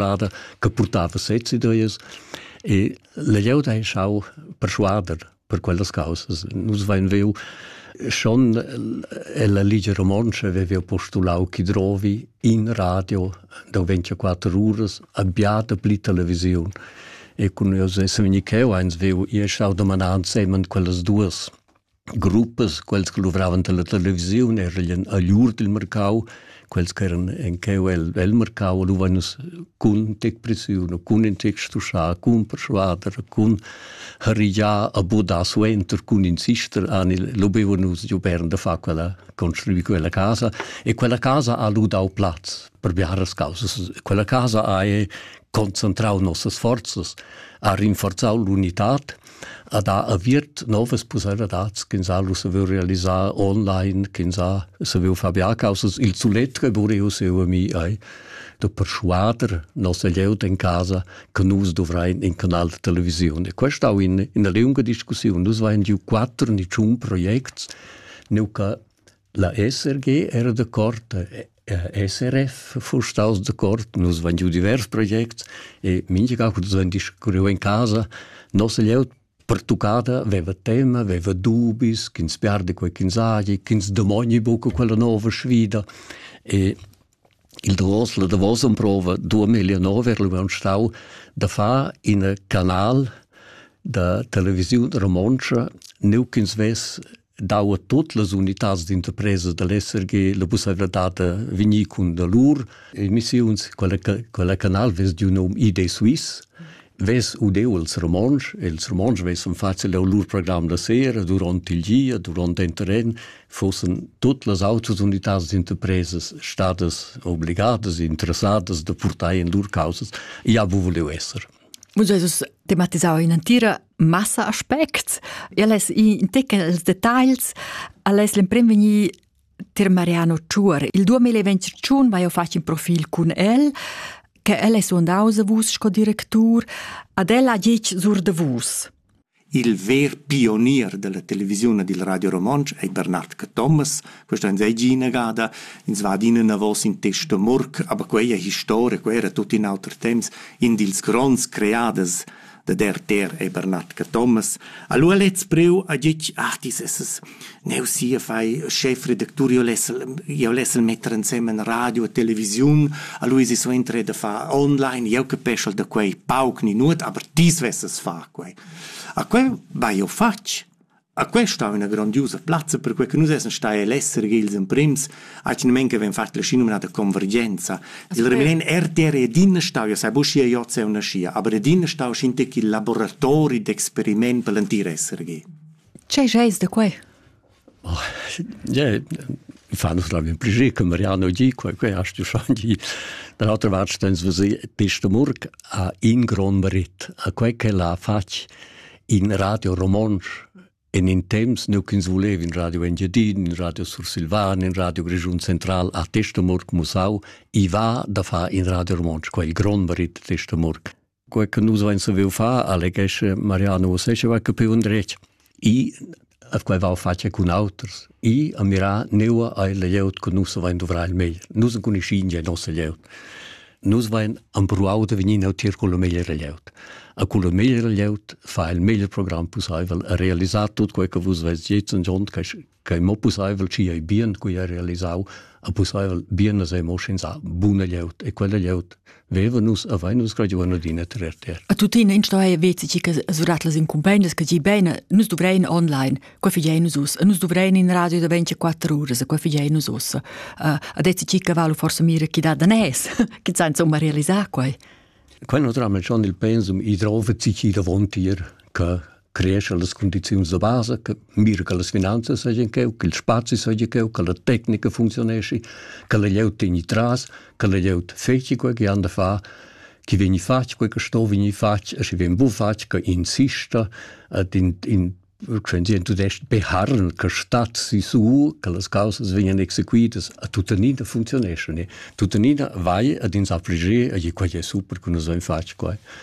plada che portava sezzi dreias e la glieud ha schau persuader per quellas causas. Nus vein veu schon ella Ligia Romontsch aveva postulau chi drovi in radio da 24 uras abbiata pli televisiun. E con io se vegni cheu eins veu, io schau domanar semen quellas duas. gruppas, quels che luvravan per la televisiun, erien a lur dil mercau, quels che eran en cheu el, el mercau, luvan nus cun tec presiun, cun in tec stuschar, cun persuader, cun harigiar a bodar suenter, cun in sister, anil, lubeva nus giu bern da far quella, construir quella casa e quella casa ha lu dau plaz per biaras causas. Quella casa ha concentrau nossas forzas, ha rinforzau l'unitad, ad ha aviert novas pusseivladads ch'ins ha lu saviu realisar online, ch'ins ha saviu far biacausas. Il sulet reburiu seua mi ei da perschuader nossa glieud en casa che nus dovrein in canal da televisiun. E questa è in, in lunga discussione. Nus vein giu quattro ni tschun projects, nu che La SRG era decord, SRF fuss staus decord, nus vein giu divers projects e mintga cun vein discurriu en casa. Nossa glieud pertuccada veva tema, veva dubis, ch'ins perdi quei ch'ins hagi, ch'ins demogni buca quella nova sfida. E il davos, la davosa prova 2009 era lu stau da far in canal da televisiun romontscha, neu ch'ins vess dau a tut las unitads d'interpresa dall'SRG la pusseivladad da vegnir cun da lur emissiuns. Quella, quella canal vess giu num ID Suisse, vess udeu els romontsch, els romontsch vessan facil leu lur program da sera duront il gia, duront in terren, fossen tut las autres unitads d'interpresas stadas obligadas, interessadas da purtar in lur causas, ja bu voleu esser. Muss Jesus tematisau in entira massa aspects. El es in teccels detagls, al es l'emprim vegni ter Mariano Tschuor. Il 2021 vai eu fach in profil cun el, che el es undaus a vus sco directur, ad el ha gich sur de vus. Il ver pionier dalla televisiun e dil Radio Romontsch ei Bernard Cathomas. Questa onns ei gia inagada. Ins va adina enavos in test da murk, aber quei è historia, quei era tut in auter temps. In dils gronds creaders da DRTR ei Bernard Cathomas. Allora lez preu a ditg, ah, dies ist es. Neu sia fai schefredactur, io lessel io lessel metter ensemen radio e televisiun, a Luisi suenter da far online, io capeschel da quei pauc ni nuot, aber tis vesses far quei. A quei vai io fatg. A quei stau üna grandiosa plazza, per quei che nus essen stai all'essere ils emprims, ac nemen che ven fat la sci nominata convergenza. Il remen RTR ed in stau, io sai buscia io se una scia, aber ed in stau scinte che laboratori d'experiment per l'antir essere ge. Tgei scheis da quei? Oh, yeah, fa nus la min pliger che Mariano di quei quei hast du schon di da l'altra vart stens vos pesta murk a in gron merit a quei che l'ha fatg in radio romonsch en in temps nu ch'ins volev in radio Engiadin, in radio Sursilvan, in radio Grischun Central a Testamurk Musau, i va da far in radio romonsch, quei il grond merit Testamurk. quei che nus vein saviu far, alleghesce Mariano Osesceva, che più un dretg. I a quei va face cun auters. I a mirà neua ai leieut che nus vein dovrar il meglier. Nus non conoscin il nostro leieut. Nus vein ambruau de venir neutir con il meglier leieut. A con il meglier leieut fa il meglier programm possibel a realizzar tutto quei che vus vest jetzt und und che mo pusseivel ci ei bien cui ha realisau a pusseivel bien as emo schins a buna glieud e quella glieud veva nus a vain nus graduana d'ina terter a tutina in stoe vezi ci che surat las incumbendas che gi bene nus dovrein online qua figei nus us nus dovrein in radio da 24 ore qua figei nus us uh, a dezi ci che valu forse mira chi da da nes chi san insomma realisar quai Quel non dramma schon il pensum i drove ci chi davontier che creescha las cundiziuns da basa, che mira che las finanzas seigien cheu, che il spazi seigi cheu, che la tecnica funzionesci, che la glieud tegni tras, che la glieud feci quei che han da far, chi vegni fatg quei che sto vegni fatg e schi vegn bu fatg che insista et in, in Quenzien tudest beharren che stat si su che las causas vegnan exequitas a tuttenina funzioneschon e tuttenina vai ad ins affligir e quei è super che nus haben fatg quei